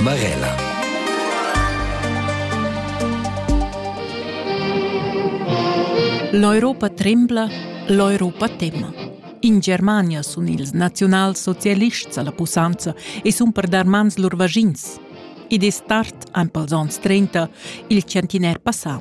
Barella. L'Europa trembla, l'Europa tema. In Germania sun ils naziunalsocialists alla pussanza e sun per dar mans lur vagins. Id es tard, an pels ons 30, il centiner passà,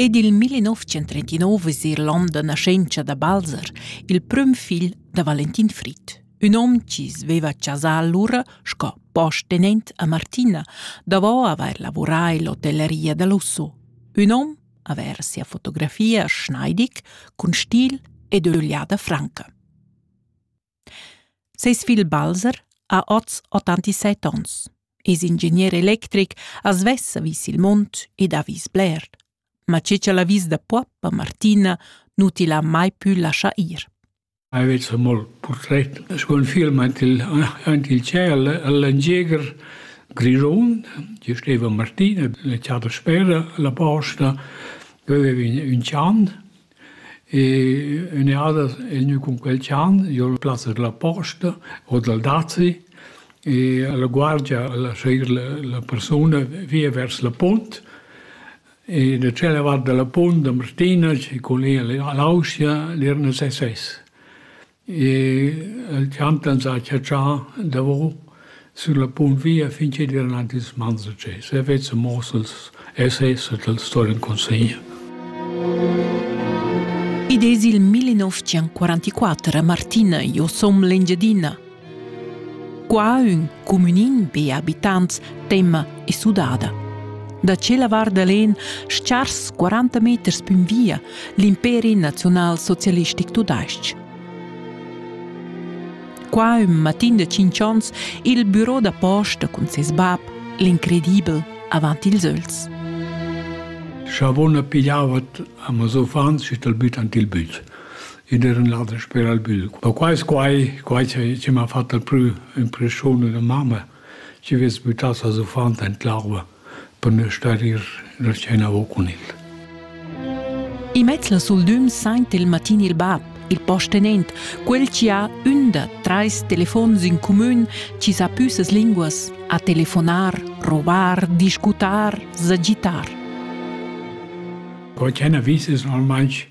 Ed il 1939 es eir l'on da naschentscha da Balzer, il prüm figl da Valentin Frit. Ün hom chi sveva a chasa allura sco postenent a Martina, davo avair lavurà ill'hotelleria da Lusso. Ün hom avair sia fotografia Schneidig cun stil ed ögliada franca. Ses figl Balzer ha oz 87 onns, es ingegner electric, as vessa vis il mund ed ha vis bler. Ma che ch'el ha vis da Puappa, Martina, nu til ha mai pü laschà ir. Aveva molt portret sco un film aint il, aint il ciel all'Engieger Grisón, ci steva Martina, la chada spera, la posta, aveva un, un chan, E ünadas el gnü cun quel chan, jo al plaz della posta o dal dazi e la guardia a lascher la persuna via vers la punt e da tschella vart da la punt da Martina chi cun ella l'Austria l'irna ses ses. El chant ans ha chatschà davo sün la punt via fin chi'd vain aint ils mans da tschè. Se vezza mos els essais e t'el sto'l incunsigner. Ed es il 1944 Martina, jo som l'Engiadina. Qua ün cumünin be abitants temma e sudada. Da tschella vart da l'En schars 40 meters pün via l'imperi naziunalsocialistic tudais-ch. Qua ün matin da 5 ons il büro da posta cun ses bab, l'incredibel, avant ils öls. Savona pigliavat a mes uffants e tal büt ant il büt. ed er in lader sper al bügl. Ma quai es quai, quai chi chi m'ha fat dal prü impreschiun da mamma, chi vess büttà ses uffant in l'arva per nu star ir la scena avo cun el. Immez la suldüm saint il matin il bab, il postenent, quel chi ha ün da trais telefons in cumün chi sa pü ses linguas, a telefonar, rovar, discutar, sagitar. Quai ch'ena vis es normalmaing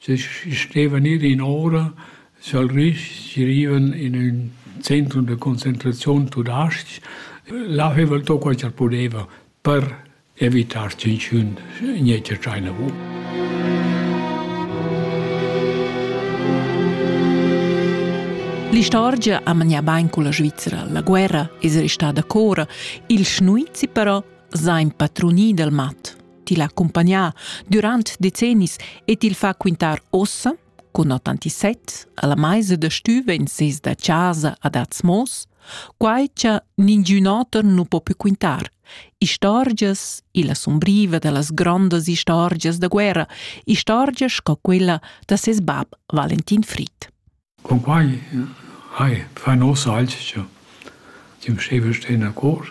Se stevan ir in ora sa'l Risch, si rivan in ün centrum da concentraziun tudais-ch, là haveva el to quai cha'l pudeva per evitar tschinchun gnetsch a tschaina vu. L'istorgia ha manià bain culla Svizra. La guerra es restada cora, il schnuizi però s'ha impadrunì dal mat. til accompagnar durant decennis e til fa quintar ossa, cun 87, alla meisa da stüva in ses da casa ad Atzmos, quai cha ningiun oter nu po più quintar. Istorgias, illa sumbriva da las grondas istorgias da guerra, istorgias sco quella da ses bab Valentin Fried. Cumpai hai fa ün hoz alch cha tü m'steva stà in accord.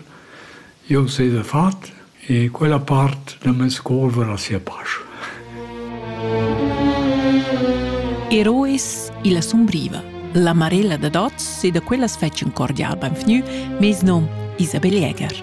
Eu s'he da fat e quella part da meis cor varà sia pasch. Eroes illa sumbriva. La Marella dad oz s'e da quellas fetsch ün cordial beinvgnü meis nom Isabel Jäger.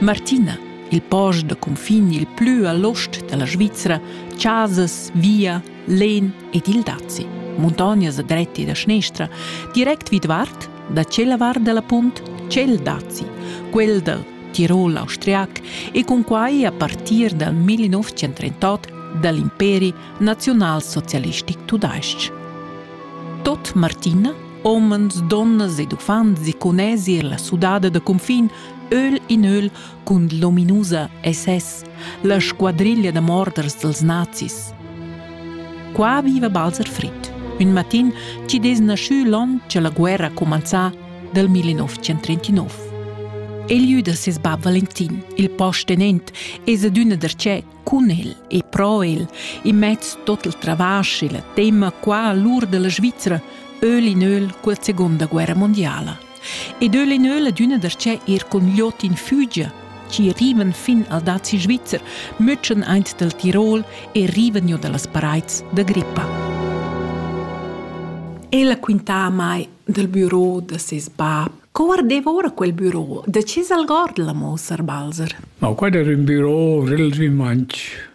Martina il post da cunfin il plü a l'ost da la Svizra, chasas, via, len ed il dazi. Muntognas a dretti da schnestra, direct vidvart da tschella var da la punt Cel Dazi, quel dal Tirol austriac e cun quai a partir dal 1938 da l'imperi naziunalsocialistic tudais-ch. Tot Martina, omens, donnas ed uffants e cunesi er la sudada da confin, öl in öl, cun l'ominusa SS, la squadriglia da morders dels nazis. Qua viva Balzer Fritt. Un matin ci des naschü l'on che la guerra comenzà del 1939. E lieu da ses bab Valentin, il postenent, es adüna darchè cun el e pro el, e mezz tot il travasch e la tema qua all'ur della Svizzera, öl in öl col Seconda Guerra Mondiala. Ed eu l'eneu la düna da sce ir cun Ljot in Fügia, chi rivan fin al dazi svizzer, mütschen aint dal Tirol e rivan giò da las paraits da grippa. Ella quintà a mai dal büro da ses bab. Co guardeva ora quel büro? Da che salgord la mossar Balzer? Ma quai era un büro relativament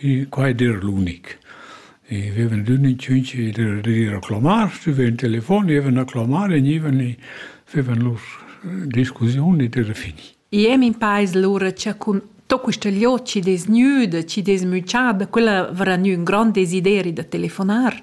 E quai d'eir l'unic. E vevan d'ün in tschinch e d'ir a clamar, stüvien in telefon, jevan a clamar e gnivan e vevan lur discussiun ed era fini. I ais impais lura cha cun tot quista gliout chi'd es gnüda, chi'd es müchada, quella varà gnü ün grand desideri da telefonar.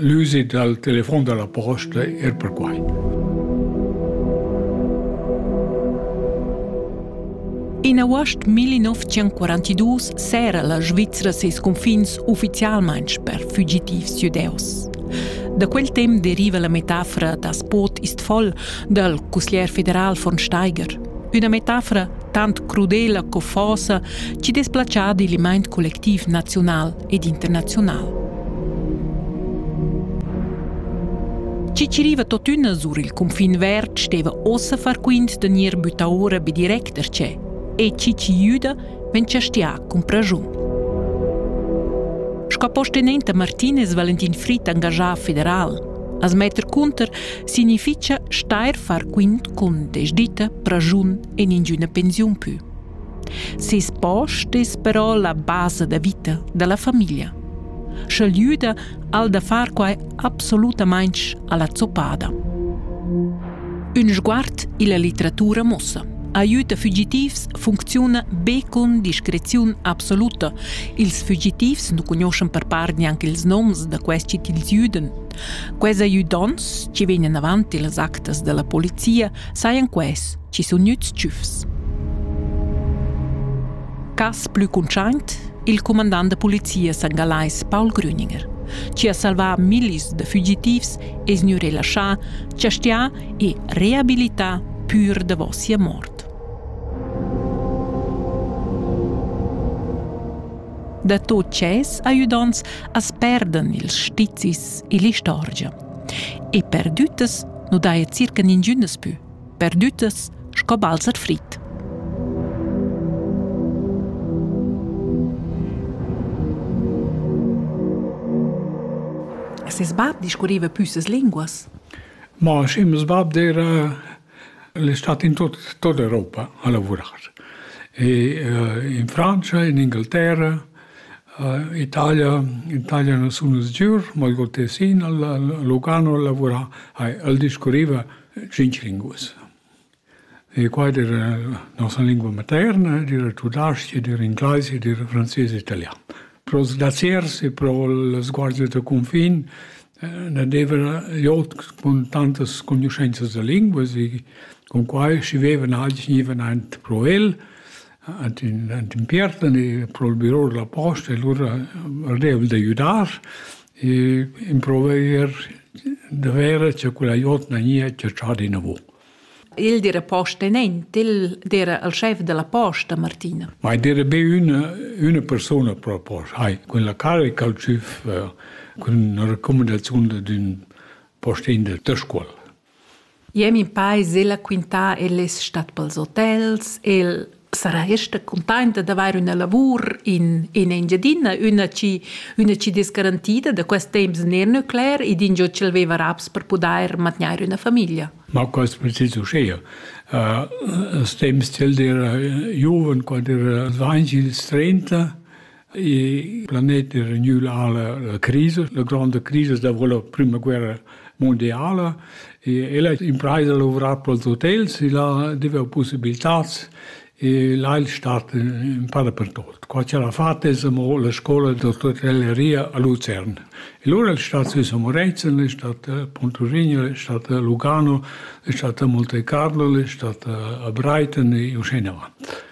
L'usit dal telefon da la posta er perquai. In august 1942 s'era la Svizra ses confins uffizialmain per fugitivs judeus. Da quel temp deriva la metafora da Spot Istfol dal cusglier federal von Steiger. Üna metafora tant crudela co fosa ci desplacia digl mind collectiv naziunal ed internaziunal. Ciciriva totüna sur il cunfin verd steva ossa far quint da gnir bütta ora be direct da che e Ciciriuda ven chastià cun praschun. Sco postenenta Martinez Valentin Fritt engajà federal As metter cunter significha steir far quint cun desditta, praschun e ningüna pensiun pü. Seis post es però la basa da vita da la famiglia. Sch'el güda al da far quai absolutamaing a la zoppada. Ün sguard illa litteratura muossa. Aiüta fugitivs funcziuna be cun discreziun absoluta. Ils fugitivs nu cugnuoschan per part gnanc ils noms da questi tils güdan. Quels aiüdonts chi vegnan avant illas actas da la polizia sajan quels chi sun gnüts tschüfs. Cas plü cuntschaint, il cumandant da polizia sangalais Paul Grüninger, chi ha salvà millis da fugitivs es gnü relaschà, chastià e reabilità pür davo sia mort. Da tot ses ajudants as perdan ils stizis e l'istorgia. E perdüttas nu daja circa ningünas pü. perdüttas sco balzer frit. Ses bab discurriva püssas linguas? Ma schimas bab era l'estat in tut, tut Europa a lavorar. E uh, in Francia, in Inghilterra, uh, Italia, Italia non sono sicuro, ma il Gotesin, a Lugano a lavorare, al discurriva tschintg linguas. E quai ed era nossa lingua materna, ed era tudasch, ed era ingleis, ed era frances e italian. Pro sdaziers e pro il sguardo da confin eh, ne deva jot con tantas conoscenzas da linguas e con quai scrivevan alti gnivan ant pro el, ant in, ant in piertan e pro il bureau della posta e lura ardevol d'aiutar E improver da vera cha quella jotna gnìa chatschada inavò. Il dira posta in ent, il dira il schef della posta, Martina. Ma il dira be üna, üna persuna pro posta. Hai, quella carica il chef eh, cun una raccomandazione d'un postin del Tescuol. Jeu min peis ella quintar el es stat pels hotels, el sarà ester cuntainta d'avair üna lavur in in Engiadina, üna chi üna chi dess garantida da quest temps ner nuclear ed ingio ch'el veva raps per pudair mantgnair üna famiglia. Ma quaist precis uschea. Als temps ch'el era giuven, quand era dvainch ils trenta, Il planet era gnü alla la crisa, la gronda crisa dovrò la prüma guerra mondiala e el ha impraisa lavorar pels hotels e là deva possibilitats e là è il stat in pa dappertut. Qua c'era fat es amo la scola d'otelleria a Luzern. E lura il stat sü Samorezen, è stat Pontorigno, è stat Lugano, è stat Monte Carlo, è stat a Brighton e uscì in avanti.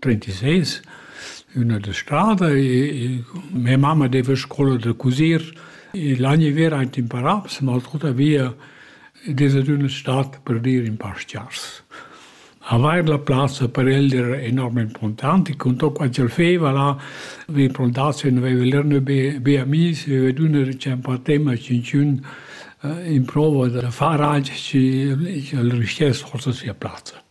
36, üna da strada e mia mamma deva scola da cusir e l'anni ver aint in Parabs, ma tuttavia ed es ad üna stat per dir in pastgiars. Avair la plazza per el era enorm importante, con tot quant ch'el feva là, vi plantaziun, aveva lerno be, be amis, aveva dunna diceva tema cincun in prova da far alch, al rischess forsa sia plazza.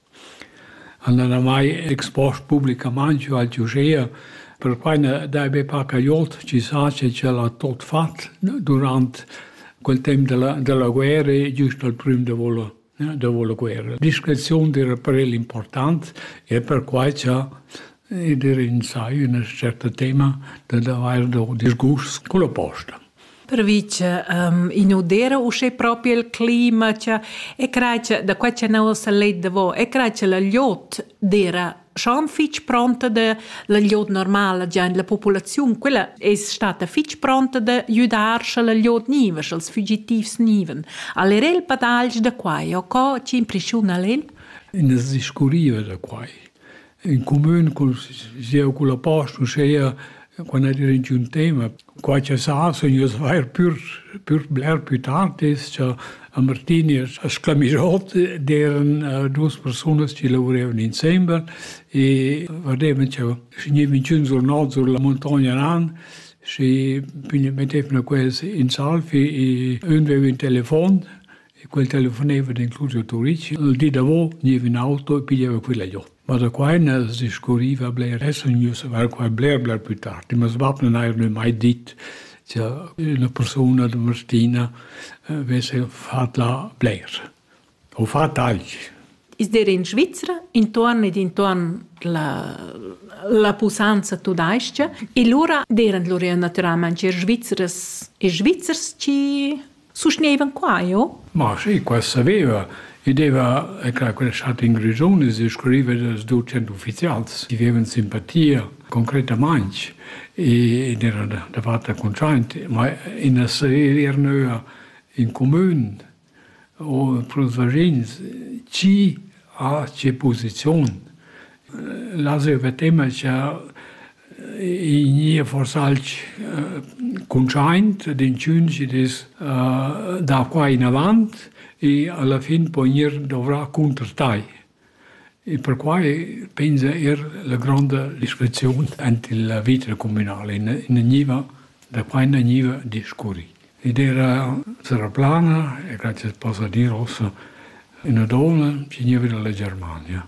El n'ha mai expost publicamaing giò al giugia, perquai n'ha dai be parcagliot chisà che ch'el ha tuot fat durant quel temp da la da la guerra e giüst al prüm davo la davo la guerra. Discreziun d'eira per el important e per quai cha Ed er ins ha üna tscherta tema dad avair do disgust culla posta. Pervi cha i nu d'eira uschè propi il clima cha e crai cha da quai cha nouva s'ha let davo e crai cha la gliot d'eira schon fich pronta da la gliot normala già in la populaziun. Quella es stata fich pronta da güdar scha la gliot gniva, scha'ls fügitivs gnivan. Al era il padagl da quai o co chi impreschiuna al el? Ün as discurriva da quai. In cumün cul sieu cul a post, uschea, quando era in giun tema, qualche sa sun ieus vair pür pür bler pü tard es cha a Martini e a Sclamischot d'eran uh, duos persunas chi lavurevan insembel e vadevan cha vgnevan giun sul nord sur la muntogna ran și mettevano quels in salvi e ün veva ün telefon E quel telefoneva d'incluso a Turic. Il di davo gneva in auto e piglieva quella giò. Ma da qua ena s'scuriva bler, essa gnü savar qua bler, bler plü tard. Ma sbab non haja mai dit che una persona da Martina avesse fat là bler. O fat tagl. Is der in Svizzera intorn ed intorn la, la pusanza tudais-cha e lura deran lur er naturalmain er Svizzeres e Svizzers ci Sustgnevan qua, jo? Ma sì, qua saveva. I deva, è clar, quel chat in Grisonis e scriveva dels ducent ufficials. Vivevan simpatia concretamaing ed era davart contraint, ma in asserir nöa in comün o pros vagins chi ha che posizion. Las eu tema cha I gnìa forsa alch cuntschaint d'inchüns chi'd es da qua inavant e alla fin po gnir dovrà cunter tai. E perquai pensa eir la gronda discreziun ant il vita cumünal e ne gniva da qua na gniva discurri. Ed era sarà plana e grazie posa dir ossa üna donna chi gniva da la Germania.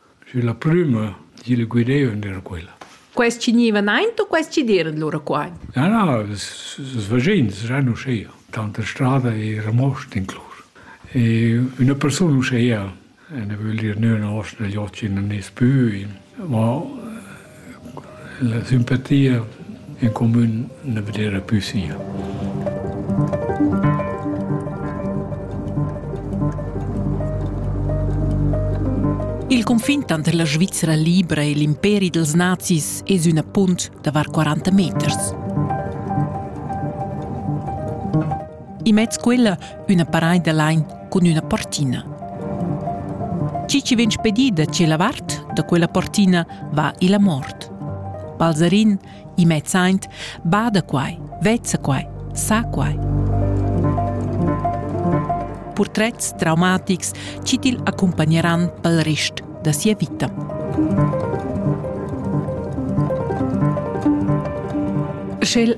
Sü la prüma di il guideu ündesch quella. Quest chi gniva naint o quest chi d'eira lura qua? Na, na, das vaschins saran uschea. Tanta strada eira most inclus. E üna persun uschea, ne vögl dir nö na osta da joch chi nun es pü, ma La simpatia en comun na vedeva plü sia. Il confin tanter la Svizra libra e l'imperi dels nazis es ün appunt da var 40 meters. Immez quella üna paraid da lain cun üna portina. Chi chi vegn spedì da tschella vart da quella portina va illa mort. Balzarin, immez aint, bada quai, vezza quai, sa quai. Purtrets traumatics chi til accompagneran pel rest da sia vita. Sch'el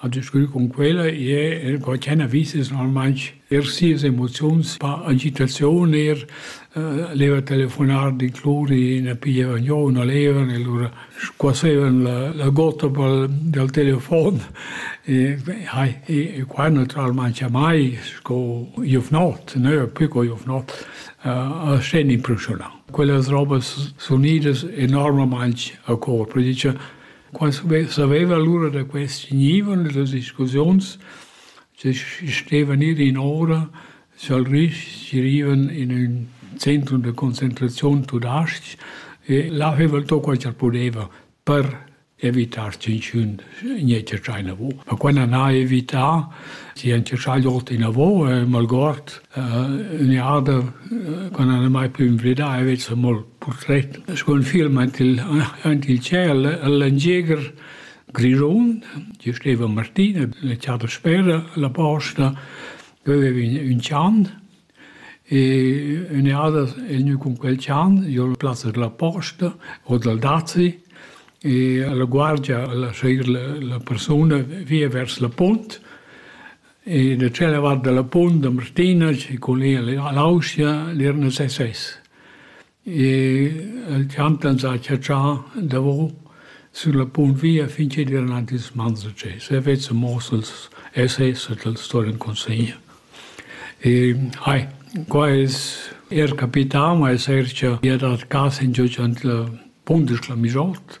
A discurrer cun quella è el quai ch'han vis es normalmaing er sias emoziuns, pa agitaziun er, leva telefonar, d'incluri, ne piglievan giò, na levan e lura squassevan la la gotta pel dal telefon e hai e qua natüralmaing jamai sco giuvnot, nö plü co giuvnot, a sten impressiunà. Quellas robas sunidas enormamaing a cor, perché dice Qua saveva lura da quest gnivon e las discussiuns che stevan ir in ora scha'l rich girivan in ün centrum da concentraziun tudais-ch e là haveva el to quai ch'el pudeva per evitar tschinchun gnir tscherchà inavo. Ma qua n'han ais evità, chi han tscherchà ot inavo e malgord ün jada quand al e mai plü invidà e vez amol purtret scu ün film aint il aint il ciel al Landjäger Grischun ci steva Martina la chada spera la posta veveva ün ün chan e ün jada el gnü cun quel chan giò la plazza della posta o dal dazi e la guardia al a seguir la la persuna via vers la punt E da tschella vart dalla punt da Martinas e cun ir all'Austria l'Irna se ses. E el champ ans ha chatschà davo sur la punt via fin ch'el era aint ils mans da Ges. E vezza mos els SS e tals sto in consegna. E hai, qua es er capità, ma es er cha ia dat cas in giò ant la punt es la Mijolt.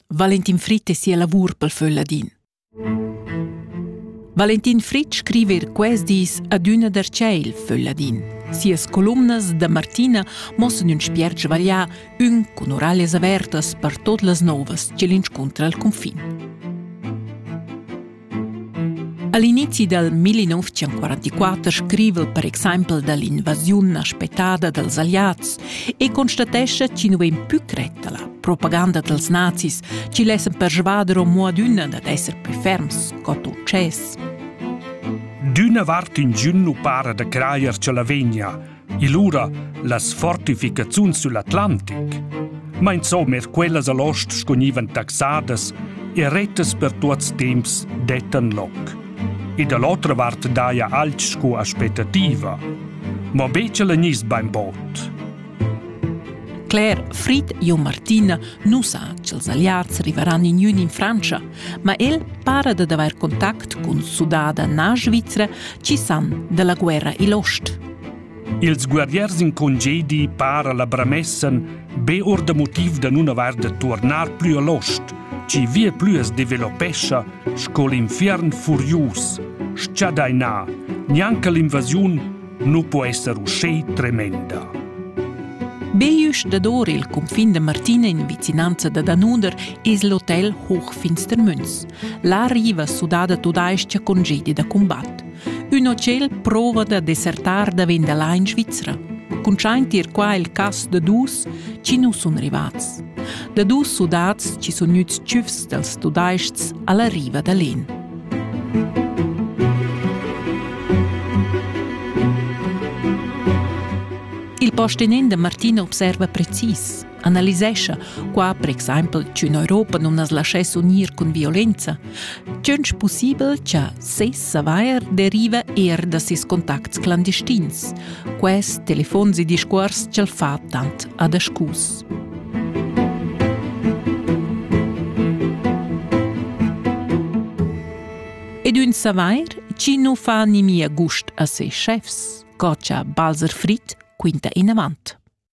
Valentin Fritt e sia lavur pel Föl Ladin. Valentin Fritsch scriva er quest dis adüna darcheu Föl Ladin. Sias columnas da Martina mossan ün spiert svarià, ün cun oralias avertas per tot las novas che l'inscuntra al confin. All'inizi dal 1944 scriva per exempel dall'invasiun aspettada dals Alliads e constatescha chi nu vain pü cretta la propaganda dals nazis chi lessan persvader omo adüna dad esser plü ferms co success. D'üna vart ingün nu para da crajer cha la vegna, e lura las fortificaziuns sull'Atlantic. Ma insomma er quellas a l'ost scognivan taxadas e rettas per tuots temps dettan loc. E da l'otra vart daja alch sco aspettativa. Ma becha la gnist bainbod. Claire, Frid e Martina nu sa ch'els aliats rivaran in ün in Frantscha, ma el para da avair contact cun sudada na svizra chi san da la guerra i'l ost. Ils guerriers in congedi para la bramessen be or da motiv da nun avair da turnar plü a l'ost, chi via plü as developescha sco l'infiern furius, schadainà, gnanca l'invasiun nu po esser uschè tremenda. Bejusch dador il cunfin da Martina in vicinanza da Danuder es l'hotel Hochfinstermünz. Là riva sudada tudais-cha congedi da cumbat. Ün hotel prova da desertar davent da là in Svizra. Cuntschaint ir qua il cas da dus chi nu sun rivats. Da dus sudats chi sun gnüts tschüfs dals tudaists a la riva da l'En. Il postenin da Martina observa precis. analisescha qua per exempel ch'ün Europa non as laschess unir cun violenza, tgönch pussibel cha ses savair deriva eir da ses contacts clandestins. Quest telefons e discuors ch'el fa tant adascus. Ed ün savair chi non fa nimia gust a ses chefs, co cha Balzer Fritt quinta inavant.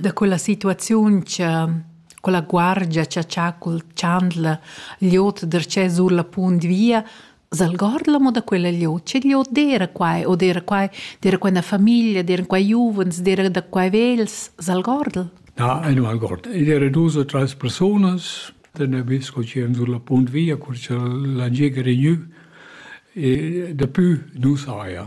da quella situaziun cha quella guardia cha cha cul chandler gl'ot darcheu sur la punt via s'algordla mo da quella gl'ot che gl'ot d'eira quai o d'eira quai d'eira quai 'na famiglia d'eira quai giuvens d'eira da quai vegls s'algordel Na, ei nu algord. Ed era dus o trais persunas den Nabisco che han sur la punt via, cur cha la gig è regnü, e dapü nu saja.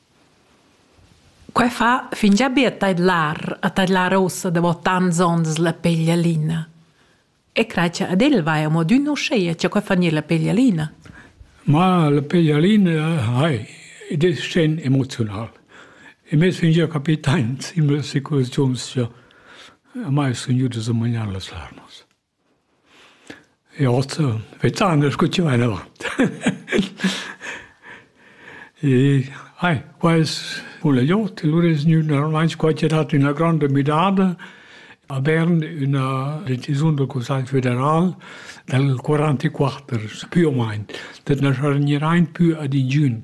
Quei fa fingià be a tadlar a tadlar ussa davo tants ons la peglialina. E crai cha ad el vaja amo adüna uschea cha quai fa gnir la peglialina. Ma la peglialina hai, id es sten emoziunal. E meis fingià capitaint in mia situaziun sia, a mai sun gnüdas a magnar las larmas. Ja so wet's anders gutt gemein aber ai quels vole jo lur es gnü normalmaing squartierat üna granda müdada a Bern üna decisiun dal Cussagl federal dal quarantaquatter pü o main, dat na sargnirai pü ad ingün.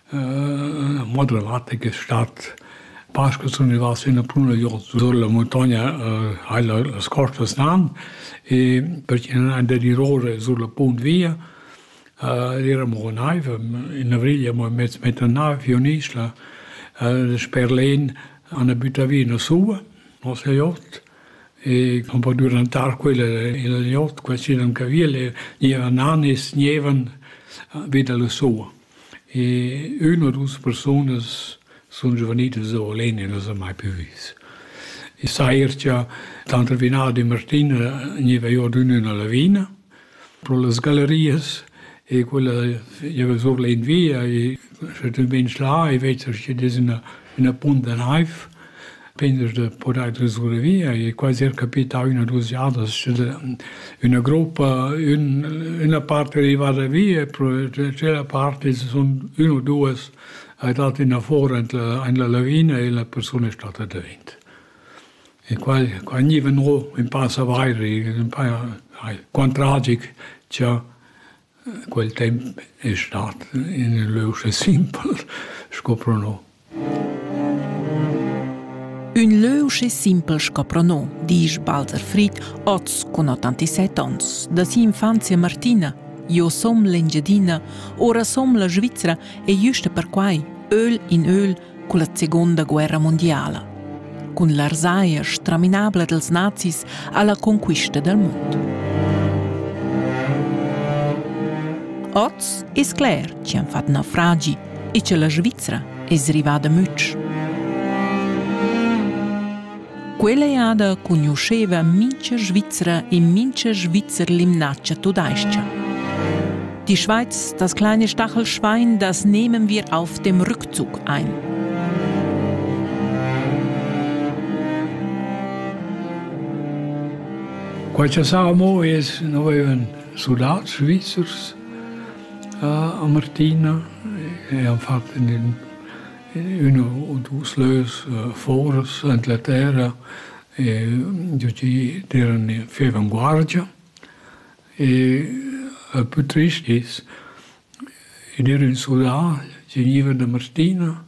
Mo dalla vart che stat Pasca sun i vas üna pruna giò sur la muntogna hai las costas nan e perché nun and dirore sur la punt via eramo a naiv in avrigl amo in mez meter naiv giò in isla sper l'En an büta vi üna suva nos jot e cun po durantar quella in il jot qualsiasi ün caviel e gniva nan e sgnevan vi da la suva. E ün u dus persunas sun giuvenilas oul en e n'as ha mai plü vis. I sair cha tanter Vinard e Martina gneva i ordün üna lavina pro las gallerias e quella geva sur l'invia e sche tü vegns là e vezas chi'd es üna ina punt da naiv pendas da podair da survivere e quasi er capità üna dus jadas sche üna gruppa ün üna part è arrivada via e cela part sun ün o duas ha dat ina fora in la lavina e la persuna è stata devent e qua qua gniva no ün pa savair in pa ai quant tragic cha Quel temp es stat ün lö uschè simpel sco pro no. Ün lö uschè simpel sco pro no, disch Balzer Frid, hoz cun 87 ons, da si'infanzia martina. Jo som l'Engiadina, ora som la Svizra e güsta perquai, öl in öl, culla seguonda guerra mundiala. Cun l'arsaia straminabla dels nazis alla conquista del mund. Oz es cler chi han fat naufragi e che la Svizzera es rivada mütsch. Quella eada cugnuscheva mincha Svizra e mincha Svizzer l'imnatscha tudais-cha. Die Schweiz, das kleine Stachelschwein, das nehmen wir auf dem Rückzug ein. Qualche Samo es noi en Sudat, Svizzers, a Martina e han fatto in Üna u dus lös fouras ant la terra e giò gi d'eiran faivan guardia e il pü trist es i d'eira ün sudà chi gniva da Martina,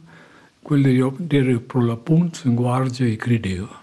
quel d'eira d'eira pro la punt in guardia e crideva.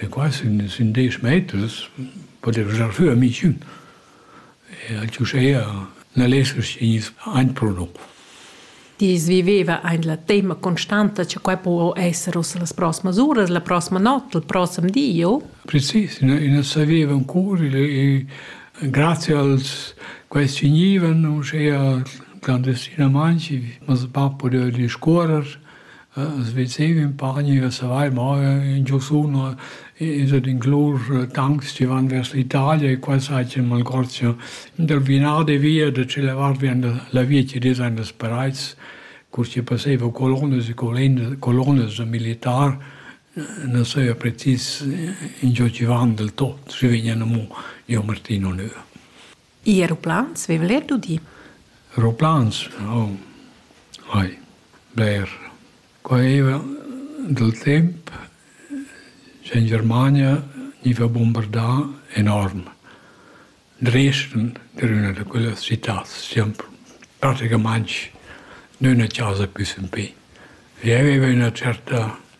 E quai sun sün desch meters podev giar sü a Michün. E uschea na leschasch gnir gnüts aint pro no. Tils viveva aint la temma constanta cha quai po esser ussa las prossmas uras, la prossima not, il prossem di o? Precis, i nu saveva ancora e grazie als quels chi gnivan uschea clandestinamaing, mas il bap pudeva discuorrer As vezeiva impari a savair mo ingio sunu ed ed inclus tancs chi van vers l'Italia e qua saja ün malgozia dal vinar de via da tschella vart vien la via chi dess aint als Perais cur chi passeiva colonas e colinas colonas da militar na saja precis ingio chi van del tot schi vegnan amo giò Martin Onur. I aeroplans veva el er dudi. Aeroplans? Oh, vai, bler. Quai era dal temp che in Germania gniva bombardà enorm. Dresden era üna da quellas citats, siam praticamaing nüna chasa pü sempè. Vi aveva üna certa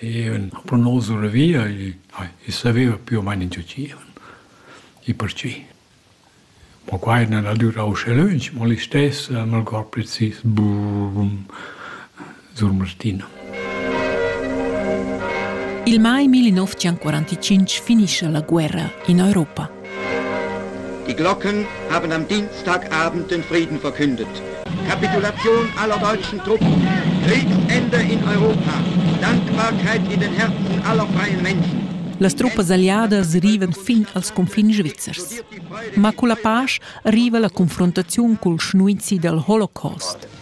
E ün prunos da via i saveva più o meno in che usciva. E perchì? Ma quai n'ha durà uschè lönch, ma listess han el gol precis brum sur Martina. Il mai 1945 finisce la guerra in Europa. Die Glocken haben am Dienstagabend den Frieden verkündet. Kapitulation aller deutschen Truppen, Kriegsende in Europa, Dankbarkeit in den Herzen aller freien Menschen. Las truppas alliadas rivan fin als confins svizzers. Ma con la pace arriva la confrontazione col schnuizi dal Holocaust.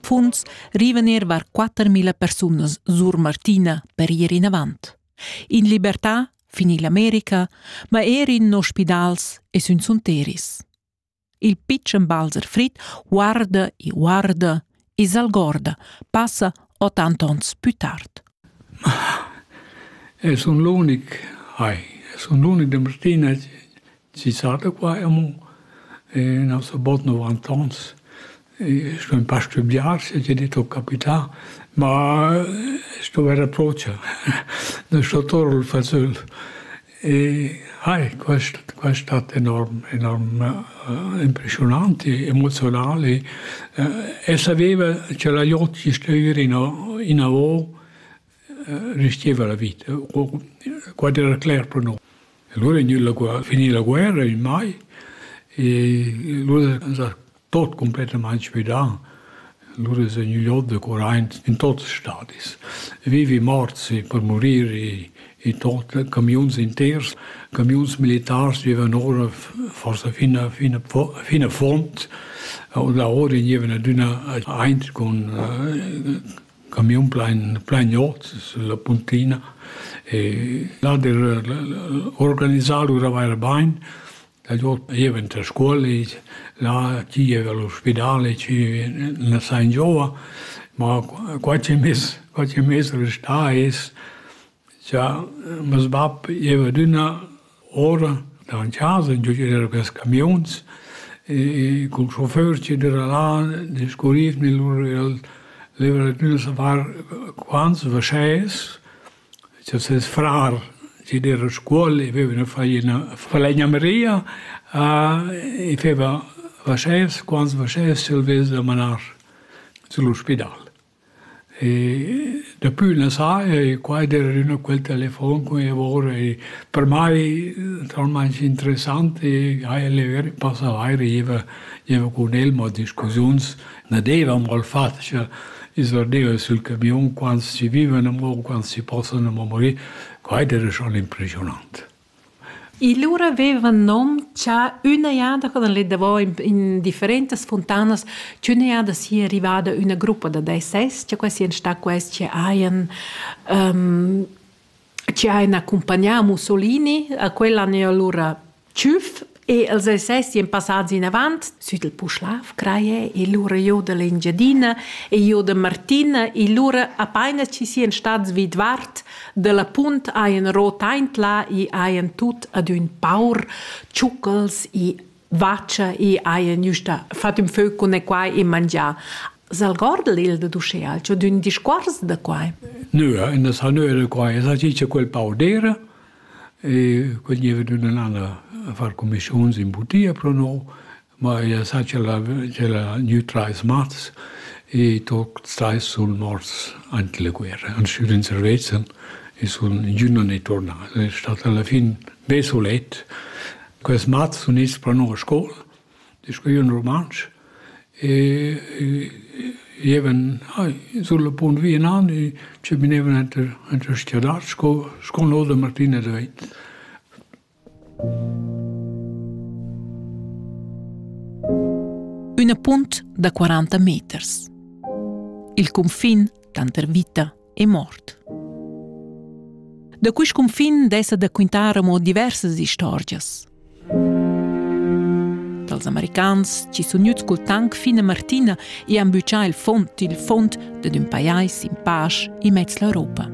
Punts rivener var 4000 persunas sur Martina per ir inavant. In libertà fin ill'America, ma er in ospidals e sün sunteris. Il pitschen Balzer Frit guarda e guarda e s'algorda, passa ottant ons più tard. Es un l'unic, hai, es un l'unic de Martina Chi saja qua amo in nossa bod novant'ans e sto ün pa stüdiar se t'i det ho capità, ma sto vair a Procia, da sto Torl fazöl e hai quist quest stat enorm enorm impreschiunant e emozional e saveva cha la jot chi stüi ira inavo restieva la vita. Quai era cler per nus. Allora è gnüda la finì la guerra in mai e lura è stà tot completament svidà. Lura è gnü giò da corrent in tuts stadis. Vivi morti per morir e, e tot, camiuns inters, camiuns militars vivan ora forse fin a, fin a, fin a font. Und la ora gnevano adüna eint con Camiun plein plein ot sulla puntina e là hat er organisà lura vaira bain. Dad ot jeva enta scuola, là chi jeva allo spidale, chi na sain gioa, ma qualche mais qualche mais restà es Cha meis bap gieva adüna ora davant casa, giò ed era quels camiuns e cul schoför chi düra là discurriv mit lur, el leva adüna savar quants vaschès cha ses frar chi d'eira a scuol i veva üna faina falegnameria i feva vaschès, quants vaschès ch'el vess da manar sü l'ospidal. E dapü la sai ei quai der üna quel telefon cun lavor ei per mai talmaing interessant e ha el passavai riva gieva cun el mo discussiuns na deva amo il fat cha i surdeva sül camiun quants chi vivan amo, quants chi possan amo morir, quai dera schon impreschiunant. Il lura vevan nom cha üna jada co dan les davo in in differentas funtanas ch'üna jada sia rivada üna gruppa da DSS, cha quai sian sta quels chi hajan chi hajan accumpagnà Mussolini, a quel han eir lura tschüf E els essien passats inavant sut il Puschlav Creie e lura giu dall'Engiadina e giu da Martina e lura apaina chi sien stats vidvart dalla punt haien ro taintla e haien tut ad ün paur tschucchels e vaccia e haien giusta fat ün fö cun e quai e mangià. S'algordel il da d'uschea c'ho d'ün discuors da quai? Nö, in es ha nö da quai, es ha dit cha quel paur d'eira E quel gieva d'ün an l'auter a far cumischuns in butia pro no, ma ella sa ch'ella ch'ella gnü trais mats e tuot trais sun morts aint la guerra, han sü ün servezzan e sun ingün non è turnà. Ed es stat alla fin be sulet. Quels mats sun its pro no a scoula disch eu in rumantsch e gievan sulla punt via nan e chaminevan enter enter stiadat sco sco no da Martina da Veit. Üna punt da 40 meters. Il cunfin tanter vita e mort. Da quist cunfin dessa da quintar amo diversas istorgias. Dals americans chi sun gnüts cul tank fin a Martina e han büchà il fond il fond dad ün pajais in pasch immez l'Europa.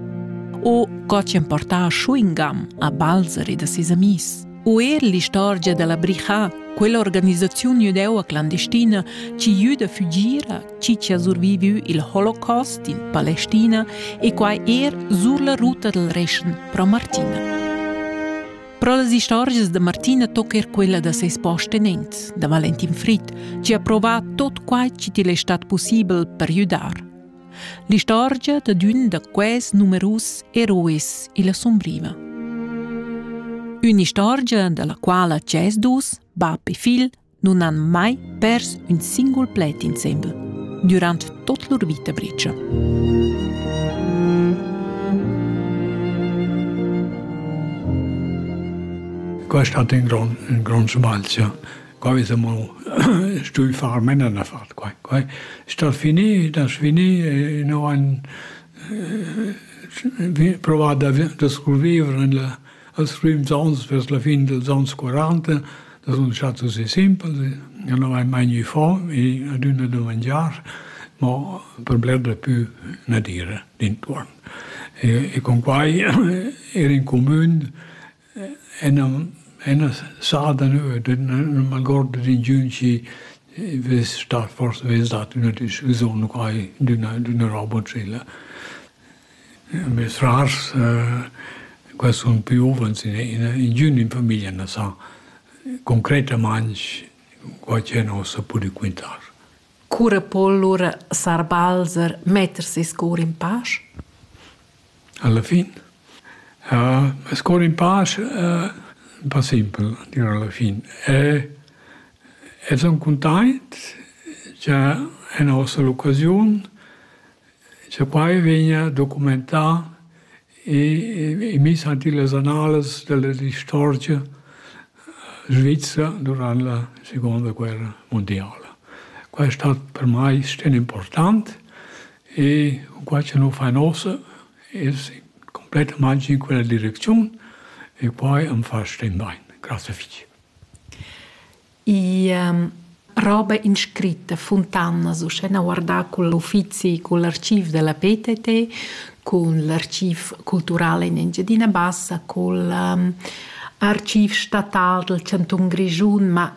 O co chi'han portà chewing gum a Balzer e da ses amis. O er l'istorgia dalla Brichà, quell'organisaziun jüdeu-clandestina chi jüda fügir a chi ha surviviu il holocaust in Palestina e quai er sur la ruta dal Reschen pro Martina. Pro las istorgias da Martina tocca er quella da ses postenents, da Valentin Fried, che ha provà tot quai che til è stat possibel per ajudar. L'istorgia da d'ün da quels numerus eroes illa sombriva. Un'istorgia dalla quala c'è dus, bab e figl, non han mai pers ün singul pled insembel durant tot lur vita bricia. Questo hat in grund, in grund sbalzio. Qua siamo stuvi far mena da far qua. qua. Sta fini, da fini, e no han eh, provato da scurvivere nella als primi ans vers la fine dels anni 40 Il resultat es simpel, jo nu vai mai gnü fo e adüna do mangiar, mo per bler pü na dire d'intuorn. E cun quai ir in cumün e non e na sa da nö, non m'algord d'ingün chi vess stat fors vess dat üna discussiun u quai d'üna d'üna roba simile. Mes rars qua sun giuvens, ingün in famiglia na sa concretamaing co ch'el nos a pudü quintar. Cura po lura sar Balzer metter seis cour in pasch? Alla fin? Meis cour in pasch ün pa simpel, dir alla fin. El sun cuntaint cha el nos a l'occasiun Cha quai vegna documentà e miss ant illas annalas della istorgia svizra durant la seguonda guerra mundiala. Quai è stat per mai sten important e cunquai cha nu fain uossa es cumplettamaing in quella direcziun e quai am fa sten bain. Grazie fich. roba inscritta Funtanas uschè guardà cun l'uffizi cun l'archiv da la PTT cun l'archiv cultural in Engiadina Bassa cul archiv statal dal chantun Grischun ma